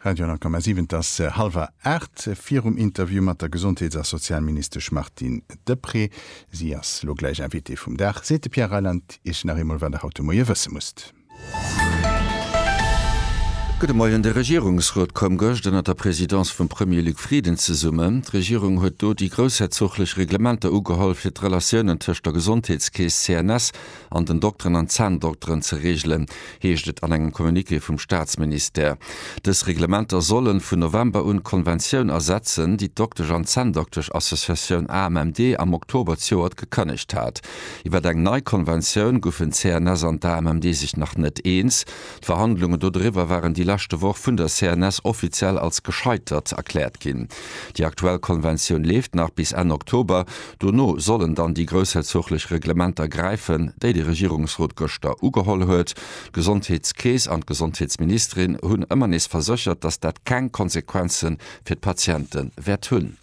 Radio Nankama 7, et ass hallwer aacht. Virum Interview mat der Gesondheets a Sozialministesch Martine Deprez, si ass elo gläich Invitée vum Dag, seet de Pierre Reyland Iech nach eemol, wat Der haut de Moie wësse musst. Gudde Moien. De Regierungsrot koum gëscht ënner der Presidence vum Premier Luc Frieden zesummen. D'Regierung huet do déi groussherzoglech Reglementer ugeholl, fir d'Relatiounen tëscht der Gesondheetskeess, CNS, an den Dokteren an Zänndokteren ze reegelen, heescht et an engem Communiqué vum Staatsministère. Dës Reglementer solle vun November un d'Konventioun ersetzen, déi d'Doktesch an Zänndokteschassociatioun AMMD am Oktober d'Joert gekënnegt hat. Iwwer eng nei Konventioun goufen d'CNS an d'AMMD sech nach net eens. D'Verhandlungen dodriwwer waren déi leschte Woch vun der CNS offiziell als gescheitert erkläert ginn. Déi aktuell Konventioun leeft nach bis Enn Oktober. Dono sollen dann déi groussherzoglech Reglementer gräifen, déi de Regierungsrot gëschter ugeholl huet. D'Gesondheetskeess an d'Gesondheetsministerin hunn ëmmer nees verséchert, datt dat keng Konsequenze fir d'Patiente wäert hunn.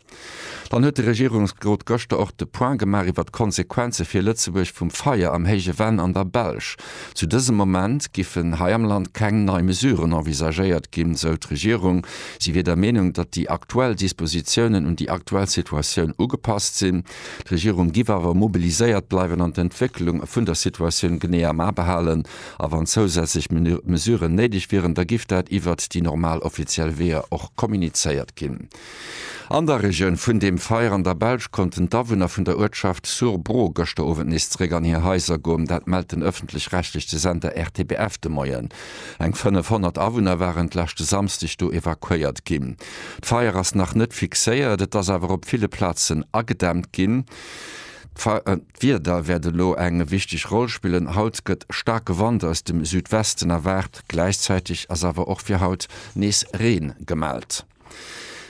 Dann huet de Regierungsrot gëschter och de Point gemaach iwwert d'Konsequenze fir Lëtzebuerg vum Feier am Héije Venn an der Belsch. Zu dësem Moment giffen hei am Land keng nei Mesuren envisagéiert ginn, sou d'Regierung. Si wier der Meenung, datt déi aktuell Dispositiounen un déi aktuell Situatioun ugepasst sinn. D'Regierung giff awer mobiliséiert bleiwen an d'Entwécklung vun der Situatioun genee am A behalen. A wann zousätzlech Mesuren néideg wieren, da giff dat iwwert déi normal offiziell Weeër och kommunizéiert ginn. An der Regioun vun dem Feier an der Belsch konnten d'Awunner vun der Uertschaft Sur-Bro gëschter Owend nees zeréck an hir Haiser goom. Dat mellt den ëffentlech-rechtlechte Sender RTBF de Moien. Eng 500 Awunner waren d'leschte Samsdeg do evakuéiert ginn. D'Feier ass nach net fixéiert, et ass awer op ville Plazen agedämmt ginn. D'Wieder wäert elo eng wichteg Roll spillen. Haut gëtt staarke Wand aus dem Südwesten erwaart, gläichzäiteg ass awer och fir haut nees Reen gemellt.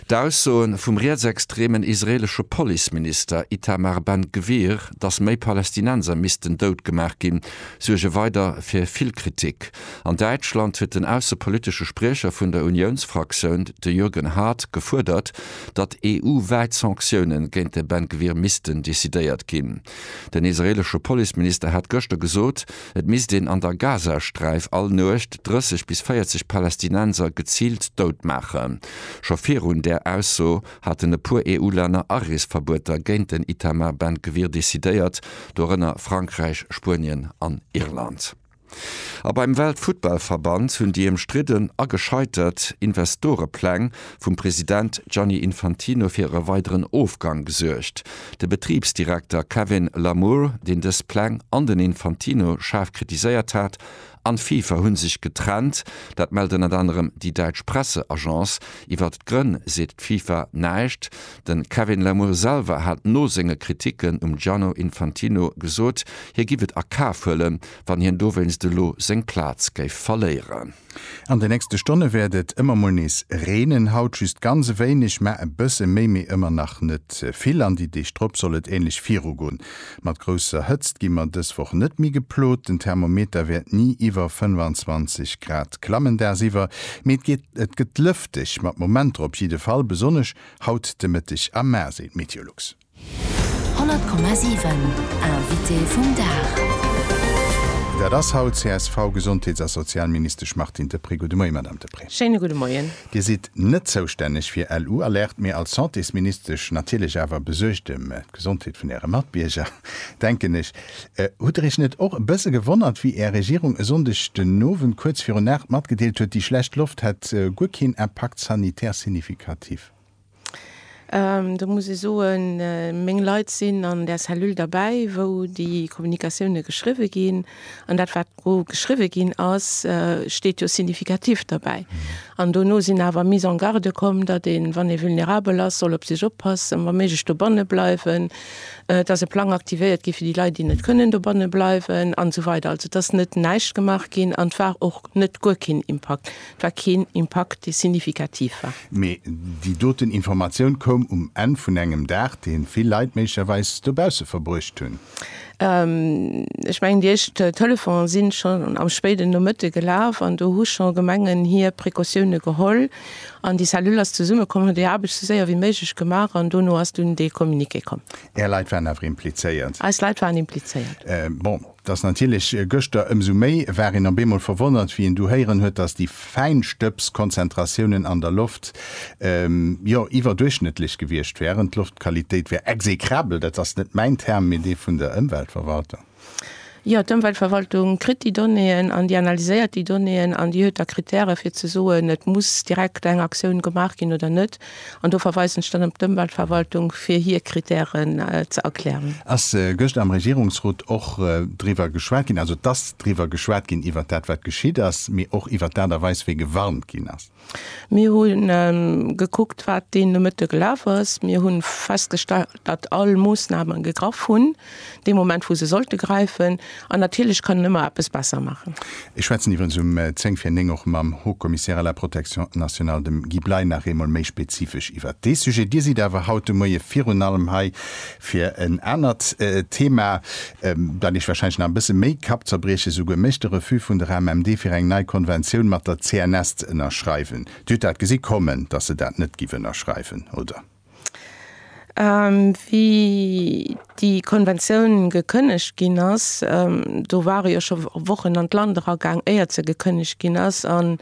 D'Aussoe vum rietsextremen israeelesche Policeminister Itamar Ben Gvir, datt méi Palästinenser missten doutgemaach ginn, suerge weider fir vill Kritik. An Däitschland huet den aussepolitesche Spriecher vun der Uniounsfraktioun, de Jürgen Haart, gefuerdert, datt EU-wäit Sanktioune géint de Ben Gvir missten decidéiert ginn. Den israeelesche Policeminister hat gëschter gesot, Et misst een an der Gazasträif all Nuecht 30 bis 40 Palästinenser geziilt dout maachen. Scho virun där Ausso haten e puer EU-Länner Areesverbueter géint den Itamar Ben Gvir decidéiert, dorënner Frankräich, Spuenien an Irland. A beim Weltfuttballverband hunn déi ëmstridden a gescheitert Investorepläng vum President Gianni Infantino fir e weideren Ofgang gesuergt. De Betribsdirekter Kevin Lamour, deen dës Pläng an den Infantino schaarf kritiséiert hat, an d'FIFA hu sech getrennt. Dat mellt ënnert anerem déi däitsch Presseagence. Iwwert d'Grënn seet d'FIFA näischt. De Kevin Lamour selwer hat no senge Kriticken um Gianno Infantino gesot, hie giff et a Kaf huelen, wann hien dowéinst elo seng Plaz géif verléieren. An de nächste Stonne wäert et ëmmer mol nees reenen, haut just ganz e wéineg, mä e bësse méi, mee ëmmer nach net vill. An déi Deeg drop soll et änlech virugoen. Mat grousser Hëtzt gi mer dës Woch net méi geplot, den Thermometer wäert ni iwwer 25 Grad klammen dagsiwwer, mee et gëtt lëfteg mat Momenter op jidde Fall, besonnesch haut de Mëtteg a mar, seet Meteolux. 100,7 Invité vum Dag. Dat ass haut d'CSV-Gesondheets a Sozialministesch Martine Deprez. Gudde Moie, Madame Deprez. Schéine gudde Moien. Dir sidd net zoustänneg fir LU-Alerte, mee als Santésministesch natierlech awer besuergt em d'Gesondheet vun Äre Matbierger, denken ech. Hutt Der Iech net och e bësse gewonnert, wéi Är Regierung e Sonndeg den Owend kuerz virun Aacht matgedeelt huet, déi schlecht Loft hätt guer keen Impact sanitaire significatif? Do muss ee soen, meng Leit sinn an där Cellule derbäi, wou déi Kommunikatioune geschriwwe ginn. An dat, wat do geschriwwe ginn ass, steet jo significatif derbäi. An dono sinn awer Mises en garde komm, datt een, wann ee vulnerabel ass, soll op sech oppassen, wa méiglech dobanne bleiwen, datt e Plang aktivéiert gétt fir déi Leit, déi net kënnen dobanne bleiwen, an esou weider. Also et ass net näischt gemaach ginn an et war och net guer keen Impakt. war keen Impakt, dee signifikativ war. Mee déi doten Informatioun koum um Enn vun engem Dag, dee vill Leit méiglecherweis dobausse verbruecht hunn. Ech mengen, déi éischt Telefone si schonn am spéiden Nomëtte gelaf an do hu scho Gemengen hir Precautioune geholl an déi Cellule ass zesummekomm, huet hir Aarbecht sou séier wéi méiglech gemaach an dono ass dunn dee Communiqué komm. Är Leit waren awer implizéiert? Eis Leit waren implizéiert. Bon, Dass natierlech gëschter ëmsou méi war een op eemol verwonnert, wéi een du héieren huet, dass déi Fäinstëbs-Konzentratiounen an der Loft, jo, iwwerduerchschnëttlech gewiescht wären. D'Loftqualitéit wär execrabel, dat ass net mäin Term, mee dee vun der Ëmweltverwaltung. Jo, d'Ëmweltverwaltung kritt déi Donnéeën an déi analyséiert déi Donnéeën an déi huet da Krittäre fir ze soen, et muss direkt eng Aktioun gemaach ginn oder net. An do verweisen ech dann op d'Ëmweltverwaltung, fir hir Kritären ze erklären. Ass gëschter am Regierungsrot och driwwer geschwat ginn, also et ass driwwer geschwat ginn iwwert dat, wat geschitt ass, mee och iwwert d'Aart a Weis, wéi gewarnt ginn ass? Mir hu gekuckt, wat dee Nomëtte gelaf ass. Mir hu festgestallt, datt all Moossname gegraff hunn. dee Moment wou se sollte gräifen, an natierlech kann en ëmmer eppes besser maachen. Ech schwätzen iwwerens um 10 vir 9 och mam Haut Commissaire à la protection nationale, dem Guy Bley, nach eemol méi spezifesch iwwert dee Sujet. Dir sidd awer haut de Moie virun allem hei fir en anert Thema, dat Iech wahrscheinlech nach e bësse méi Kappzerbrieche souguer mécht, de Refus vun der AMMD fir eng nei Konventioun mat der CNS ze ënnerschreiwen. Dir hutt dat gesi kommen, datt se dat net giff ënnerschreiwen, oder? Wéi déi Konventioun gekënnegt ginn ass, do ware jo scho Wochen an d'Land eragaang, éiert se gekënnegt ginn ass. An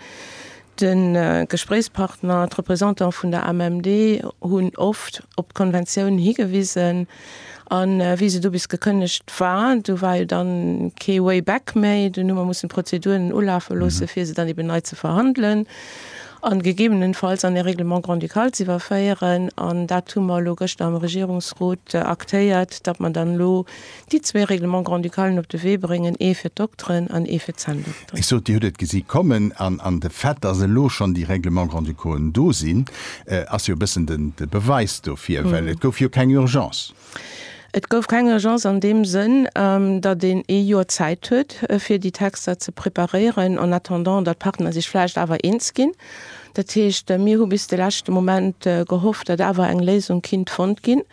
de Gespréichspartner, d'Representantë vun der AMMD hunn oft op d'Konventioun higewisen. A wéi se do bis gekënnegt war, do war jo dann kee way back méi. Dunn hu mer mussen d'Prozeduren ulafe loosse fir se dann eben nei ze verhandelen a gegebenenfalls an e Règlement grand-ducal ze iwwerféieren. An dat hu mer elo gëschter am Regierungsrot aktéiert, datt mer dann elo déi zwee Règlements grand-ducalen op de Wee bréngen, ee fir d'Dokteren an ee fir d'Zänn-Doktere. Ech sot, Dir hutt et gesi kommen, an de Fait, dass elo schonn déi Règlements grand-ducaux do sinn, ass jo e bëssen de Beweis dofir, well et gouf jo keng Urgence. Et gouf keng Urgence an deem Sënn, datt een ee Joer Zäit huet, fir déi Texter ze preparéieren, en attendant, datt d'Partner sech vläicht awer eens ginn. Dat heescht, mir hu bis de leschte Moment gehofft, datt awer eng Léisung kinnt fonnt ginn.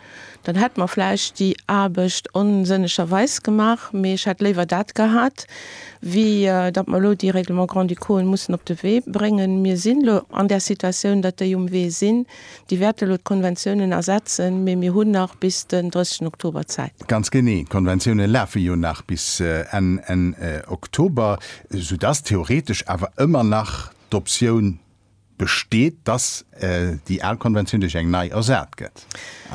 Dann hätt mer vläicht déi Aarbecht onsënnegerweis gemaach, mee ech hätt léiwer dat gehat, wéi datt mer elo déi Règlements grand-ducaux mussen op de Wee bréngen. Mir sinn elo an där Situatioun, datt déi um Wee sinn. Déi wäerte elo d'Konventiounen ersetzen, mee mir hunn nach bis den 30 Oktober Zäit. Ganz genee, d'Konventiounen lafe jo nach bis Enn Oktober, soudatt theoretesch awer ëmmer nach d'Optioun besteet, dass déi al Konventioun duerch eng nei ersat gëtt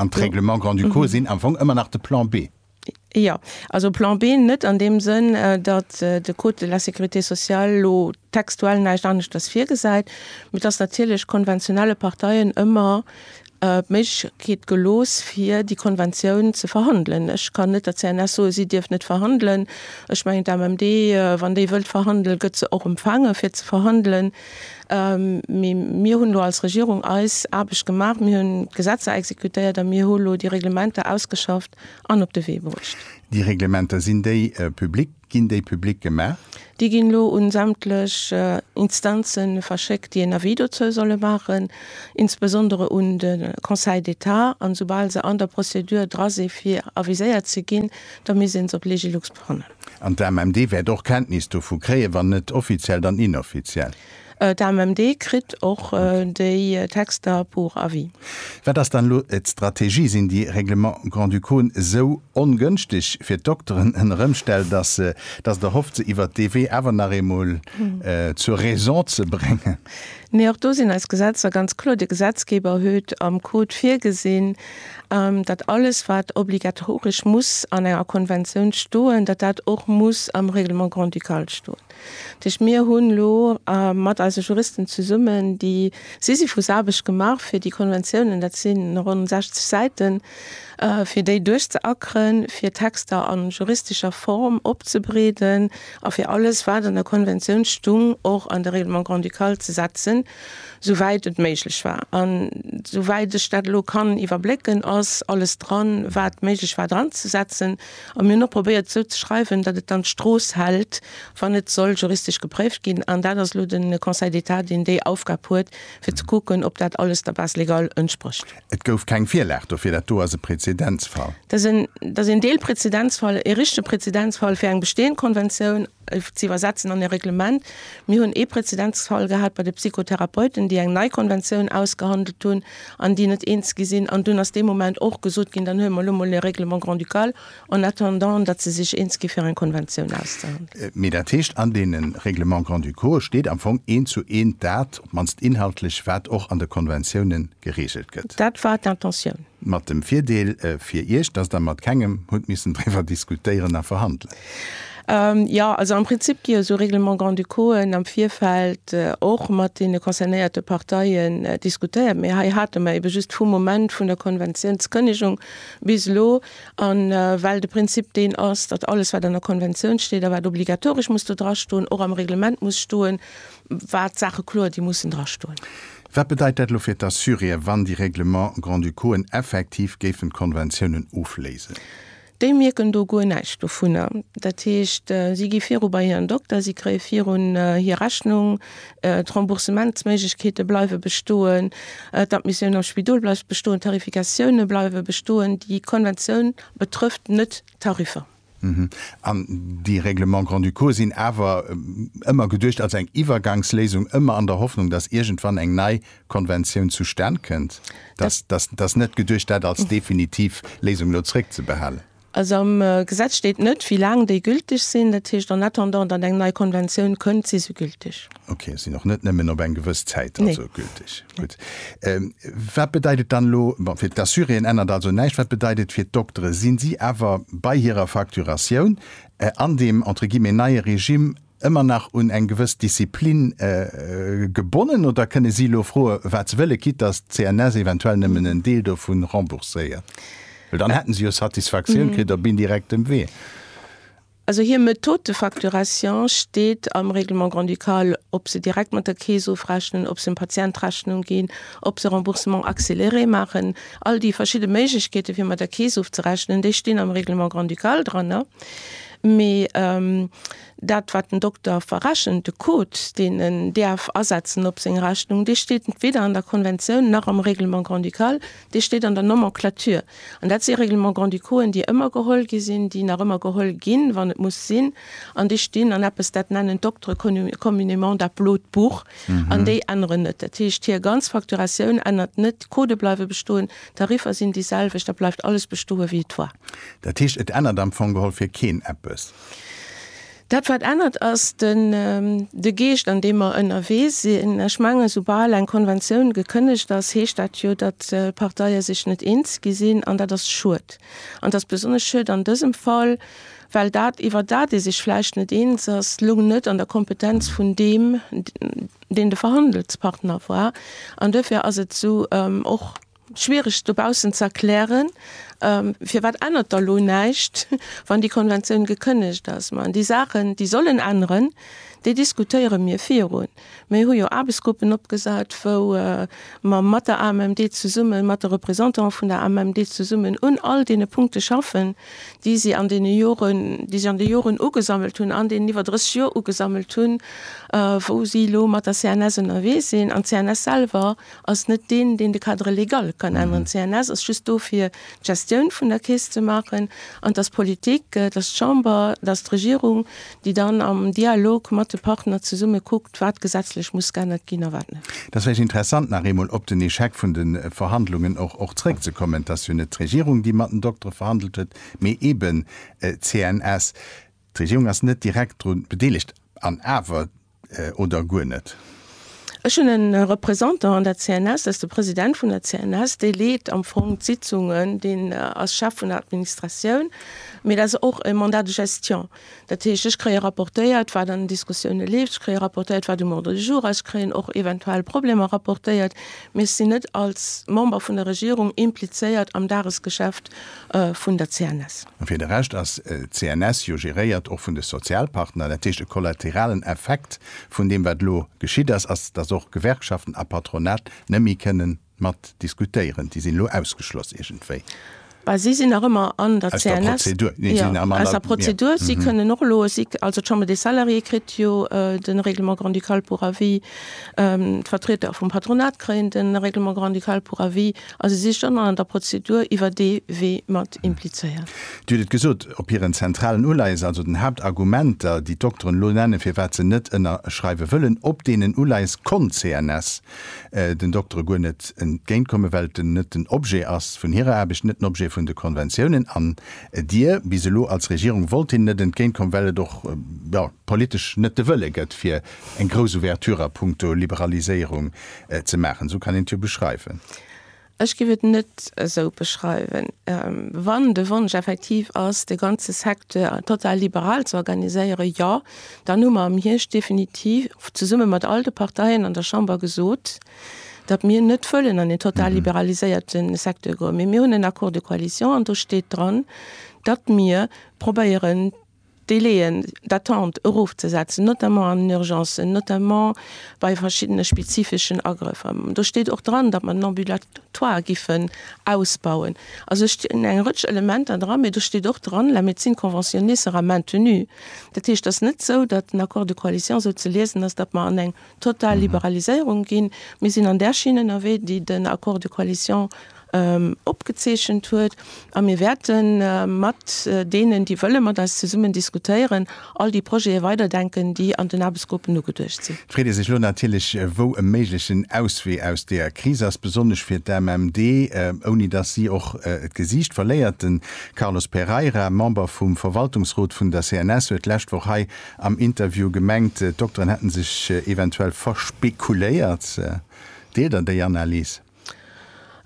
an d'Règlements grand-ducaux sinn am Fong ëmmer nach de Plan B. Jo, also Plan B net an deem Sënn, datt de Code de la sécurité sociale elo textuell näischt aneschters virgesäit, mee datt natierlech konventionelle Parteien ëmmer d'Méiglechkeet gelooss, fir déi Konventioun ze verhandelen. Ech kann net der CNS soen, si dierf net verhandelen. Ech mengen, d'AMMD, wann déi wëllt verhandelen, gëtt se och empfaange fir ze verhandelen. Mee mir hunn elo als Regierung eis Aarbecht gemaach, mir hunn d'Gesetzer exekutéiert a mir hu lo déi Reglementer ausgeschafft an op de Wee bruecht. Déi Reglementer, sinn déi public? Ginn déi public gemaach? Déi ginn elo un sämtlech Instanzen verschéckt, déi een Avis dozou solle maachen, insbesondere un de Conseil d'État. An esoubal se an der Prozedur dra si fir aviséiert ze ginn, da misst een se op Legilux brannen. An d'AMMD wäert och Kenntnis dovu kréien, wann net offiziell, dann inoffiziell? D'AMMD kritt och déi Texter pour avis. Wat ass dann elo d'Strategie? Sinn déi Règlements grand-ducauen esou ongënschteg fir d'Dokteren en Erëmstell, datt et erhofft, se iwwer dee Wee awer nach eemol zur Raison ze bréngen? Nee, och do sinn eis Gesetzer ganz kloer. De Gesetzgeber huet am Code virgesinn, datt alles, wat obligatoresch muss an enger Konventioun stoen, datt dat och muss am Règlement grand-ducal stoen. Dat heescht, mir hunn elo mat eise Juristen zesummen déi Sisyphus Aarbecht gemaach fir déi Konventiounen, dat si ronn 60 Säiten, fir déi duerchzeackeren, fir Texter a juristescher Form opzebreeden a fir alles wat an der Konventioun stung och an de Règlement grand-ducal ze setzen, sou wäit et méiglech war. An sou wäit ech dat elo kann iwwerblécken, ass alles dran wat méiglech war dranzesetzen. A mir hunn och probéiert et esou ze schreiwen, datt et dann d'Strooss hält, wann et soll juristesch gepréift ginn. An dat ass elo de Conseil d'État, deen déi Aufgab huet, fir ze kucken, ob dat alles der Base légale entsprécht. Et gouf keng Virlag dofir. Dat do ass e Prezedenzfall. Dat ass een Deelprezedenzfall, ee richtege Prezedenzfall fir eng bestehend Konventioun. ze iwwersetzen an e Reglement. Mir hunn ee Präzedenzfall gehat bei de Psychotherapeuten, déi eng nei Konventioun ausgehandelt hunn an déi net eens gi sinn. An dunn ass dee Moment och gesot ginn, dann huele mer elo mol e Règlement grand-ducal en attendant, datt se sech eens gi fir eng Konventioun auszehandelen. Mee dat heescht, an deene Règlements grand-ducaux steet am Fong eent zu eent dat, op d'mannst inhaltlech, wat och an de Konventioune gereegelt gëtt. Dat war d'Intentioun. Mat dem Virdeel fir Iech, datt Der mat kengem hutt missen driwwer diskutéieren a verhandelen. Jo, also am Prinzip gi jo esou Règlements grand-ducauxen am Virfeld och mat deene concernéierte Parteien diskutéiert. Mee hei hate mer eebe just vum Moment vun der Konventiounskënnegung bis elo. A well de Prinzip deen ass, datt alles, wat an der Konventioun steet a wat obligatoresch muss do drastoen, och am Reglement muss stoen, war d'Saache kloer, déi mussen drastoen. Wat bedeit dat elo fir d'Assuréen, wann déi Règlements grand-ducauxen effektiv géifen d'Konventiounen ofléisen? Déi mierken do guer näischt dovunner. Dat heescht, si gi viru bei hiren Dokter, si kréie virun hir Rechnung, d'Remboursementsméiglechkeete bleiwe bestoen, d'Admissioun am Spidol bleift bestoen, d'Tarifikatioune bleiwe bestoen. Déi Konventioun betrëfft net d'Tariffer. An déi Règlements grand-ducaux sinn awer ëmmer geduecht als eng Iwwergangsléisung, ëmmer an der Hoffnung, datt iergendwann eng nei Konventioun zustan kënnt, dat ass net geduecht, dat als definitiv Léisung elo zréckzebehalen. Also am Gesetz steet net, wéi laang déi gülteg sinn. Dat heescht, en attendant datt eng nei Konventioun kënnt, si se gülteg. Okay, sinn och net nëmmen op eng gewëss Zäit also gülteg. Gutt. Wat bedeit et dann elo, bon, fir d'Assuréen ännert also näischt, wat bedeit et fir d'Doktere? Sinn si awer bei hirer Facturatioun an deem, entre guillemets, neie Regime, ëmmer nach un eng gewëss Disziplin gebonnen oder kënne si elo froe wat se wëllen, quitte dass d'CNS eventuell nëmmen en Deel dovu rembourséiert? Well dann hätte se jo Satisfaktioun kritt op indirektem Wee. Also hir Methode de facturation steet am Règlement grand-ducal, ob se direkt mat der Keess ofrechnen, ob se dem Patient d'Rechnung ginn, ob se Remboursement accéléré maachen. All déi verschidde Méiglechkeete fir mat der Keess ofzerechnen, déi stinn am Règlement grand-ducal dran. Mee dat, wat den Dokter verrechent, de Code, deen en däerf asetzen op seng Rechnung, dee steet weder an der Konventioun nach am Règlement grand-ducal, dee steet an der Nomenclature. An dat si Règlements grand-ducauxen, déi ëmmer geholl gi sinn, déi nach ëmmer geholl ginn, wann et muss sinn, an déi stinn an eppes, dat nennen d'Doktere communément dat blot Buch, an déi änneren net. Dat heescht, hir ganz Facturatioun ännert net, d'Codë bleiwe bestoen. D'Tariffer sinn déi selwecht, da bleift alles bestoe wéi et war. Dat heescht, et ännert am Fong geholl fir keen eppes? Dat wat ännert ass de Geescht an deem mer ënnerwee sinn. Ech mengen, soubal eng Konventioun gekënnegt ass, heescht dat jo, datt d'Parteie sech net eens gi sinn an dat ass schued. An et ass besonnesch schued an dësem Fall, well dat iwwer dat ee sech vläicht net eens ass, lo net an der Kompetenz vun deem, deen de Verhandelspartner war, an duerfir ass et esou och schwierig dobaussen ze erklären, firwat ännert da lo näischt, wann déi Konventioun gekënnegt ass. Mä an déi Saachen, déi sollen änneren, déi diskutéiere mir virun. Mir hu jo Aarbechtsgruppen opgesat, wou mer mat der AMMD zesummen, mat de Représentantë vun der AMMD zesummen un all deene Punkte schaffen, déi si an deene Joren, déi si an de Joren ugesammelt hunn, an deenen iwwer 30 Joer ugesammelt hunn, wou si elo mat der CNS ënnerwee sinn. An d'CNS selwer ass net deen, deen de Cadre légal kann änneren. D'CNS ass just do fir d'Gestioun vun der Keess ze maachen, an dass d'Politik, dass d'Chamber, dass d'Regierung déi dann am Dialog mat de Partner zesumme kuckt, wat gesetzlech muss geännert ginn a wat net. Et ass vläicht interessant, nach eemol op den Échec vun de Verhandlungen och och zrëckzekommen. Et ass jo net d'Regierung, déi mat den Doktere verhandelt huet, mee eeben d'CNS. D'Regierung ass net direkt dru bedeelegt, an awer oder guer net? Ech hunn e Représentant an der CNS, dat ass de President vun der CNS, dee leet am Fong d'Sitzungen, deen ass Chef vun der Administratioun, mee dat ass och e Mandat de gestion. Dat heescht, ech kréie rapportéiert, wat an den Diskussioune leeft, ech kréie rapportéiert, wat um Ordre du jour ass, ech kréien och eventuell Problemer rapportéiert, mee ech sinn net als Member vun der Regierung implizéiert am Dagesgeschäft vun der CNS. A fir de Rescht ass d'CNS jo geréiert och vun de Sozialpartner. Dat heescht, e kollateralen Effekt vun deem, wat elo geschitt ass, ass, dass och Gewerkschaften a Patronat net méi kënnen mat diskutéieren. Déi sinn elo ausgeschloss iergendwéi. Bah, si sinn nach ëmmer an der CNS. Aus der Prozedur. Nee, si sinn nach ëmmer an der. Aus der Prozedur. Si kënnen och elo, si, also d'Chambre des Salariés kritt jo de Règlement grand-ducal pour avis, d'Vertrieder vum Patronat kréien de Règlement grand-ducal pour avis. A si sicht ëmmer an der Prozedur iwwer dee Wee mat implizéiert. Dir hutt et gesot, op hiren zentralen Uleies, also den Haaptargumenter, déi d'Dokteren elo nennen, firwat se net ënnerschreiwe wëllen, op deenen Uleies konnt d'CNS den Doktere guer net entgéintkommen, well et net den Objet ass vun hirer Aarbecht, net den Objet vun de Konventiounen. An Dir bis elo als Regierung wollt hinnen net entgéintkommen, well et och, jo, politesch net de Wëlle gëtt, fir eng grouss Ouverture a puncto Liberaliséierung Ze maachen, esou kann een et jo beschreiwen. Ech géif et net esou beschreiwen. Wann de Wonsch effektiv ass, de ganze Secteur total liberal ze organiséieren, jo, dann hu mer am Hierscht definitiv zesumme mat all de Parteien an der Chamber gesot, datt mir net wëllen an een total liberaliséierte Secteur goen. Mee mir hunn en Accord de coalition an do steet dran, datt mir probéieren, d'Délaiën d'attente erofzesetzen, notamment an den Urgencen, notamment bei verschiddene spezifeschen Agrëffer. Do steet och dran, datt mer den Ambulatoire giffen ausbauen. Also et stinn eng Rëtsch Elementer dran, mä do steet och dran, La médecine conventionnée sera maintenue. Dat heescht, et ass net esou, datt den Accord de coalition esou ze liesen ass, datt mer an eng total Liberaliséierung ginn. Mir sinn an där Schinn ënnerwee, déi den Accord de coalition opgezeechent huet, a mir wäerte mat deenen, déi wëlle mat eis zesummen diskutéieren, all déi Projete weiderdenken, déi an den Aarbechtsgruppen ugeduecht sinn. Freet ee sech elo natierlech, wou e méiglechen Auswee aus där Kris ass, besonnesch fir d'AMMD, ouni dass si och d'Gesiicht verléiert. De Carlos Pereira, Member vum Verwaltungsrot vun der CNS, huet d'lescht Woch hei Am Interview gemengt, d'Dokteren hätten sech eventuell verspekuléiert. Deelt der déi Analys?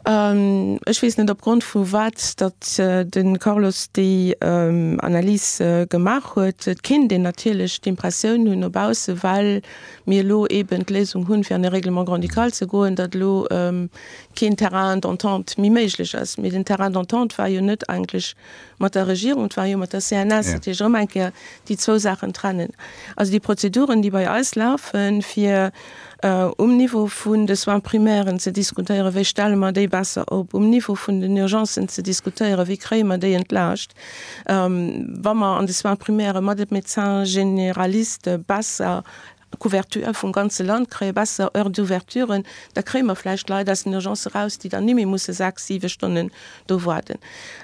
Ech weess net opgrond vu wat datt de Carlos déi Analys gemaach huet. Et kéint een natierlech d'Impressioun hunn no bausse, well mir elo eben d'Léisung hunn, fir an e Règlement grand-ducal ze goen, datt elo keen Terrain d'entente méi méiglech ass. Mee den Terrain d'entente war jo net eigentlech Mat der Regierung, et war jo mat der CNS, dat heescht erëm eng Kéier déi zwou Saachen trennen. Also déi Prozeduren, déi bei eis lafen, fir um Niveau vun de Soins primairen ze diskutéieren, wéi stelle mer déi besser op, um Niveau vun den Urgencen ze diskutéieren, wéi kréie mer déi entlaascht, wa mer an de Soins primaire mat de Médecin généraliste besser Couverture vum ganze Land kréie, besser Heures d'ouverturen, da kréie mer vläicht Leit aus den Urgencë eraus, déi dann niméi musse sechs, siwe Stonnen do warden.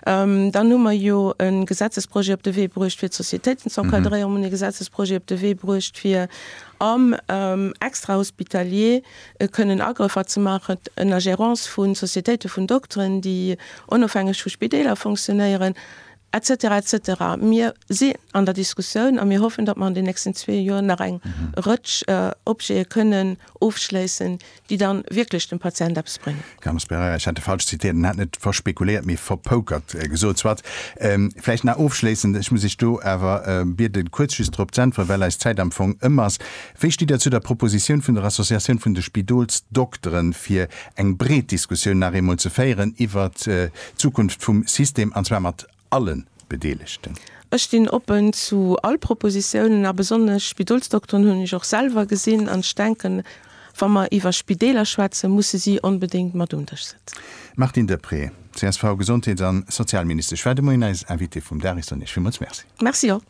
Dann hu mer jo e Gesetzesprojet op de Wee bruecht, fir d'Sociétéiten ze encadréieren. Mer hunn e Gesetzesprojet op de Wee bruecht, fir am extrahospitalier kënnen Agrëffer ze maachen en der Gérance vu Sociétéite vun Dokteren, déi onofhängeg vu Spideeler funktionéieren. Etc etc. Mir si an der Diskussioun a mir hoffen, datt mer an den nächsten zwee Joer nach eng Rëtsch Objete kënnen ofschléissen, déi da wierklech dem Patient eppes bréngen. Carlo Sperrer, Ech hat e falsch zitiert, en hat net verspekuléiert, mee verpokert gesot. Soit. Vläicht nach ofschléissend, ech muss Iech do awer bieden, kuerz just drop z'äntweren, well eis Zäit am Fong ëm ass. Wéi stitt Dir zu der Propositioun vun der Associatioun vun de Spidolsdokteren, fir eng breet Diskussioun nach eemol ze féieren iwwert d'Zukunft vum System, an zwar mat alle Bedeelegten? Ech stinn oppen zu all Propositiounen, a besonnesch Spidolsdokteren hunn ech och selwer gesinn, an ech denken, wa mer iwwer Spideeler schwätzen, musse si onbedéngt mat um Dësch sëtzen. Martine Deprez, csv, Gesondheets a Sozialministesch war de Moien eis Invitée vum Dag. Ech soen Iech villmools Merci. Merci och.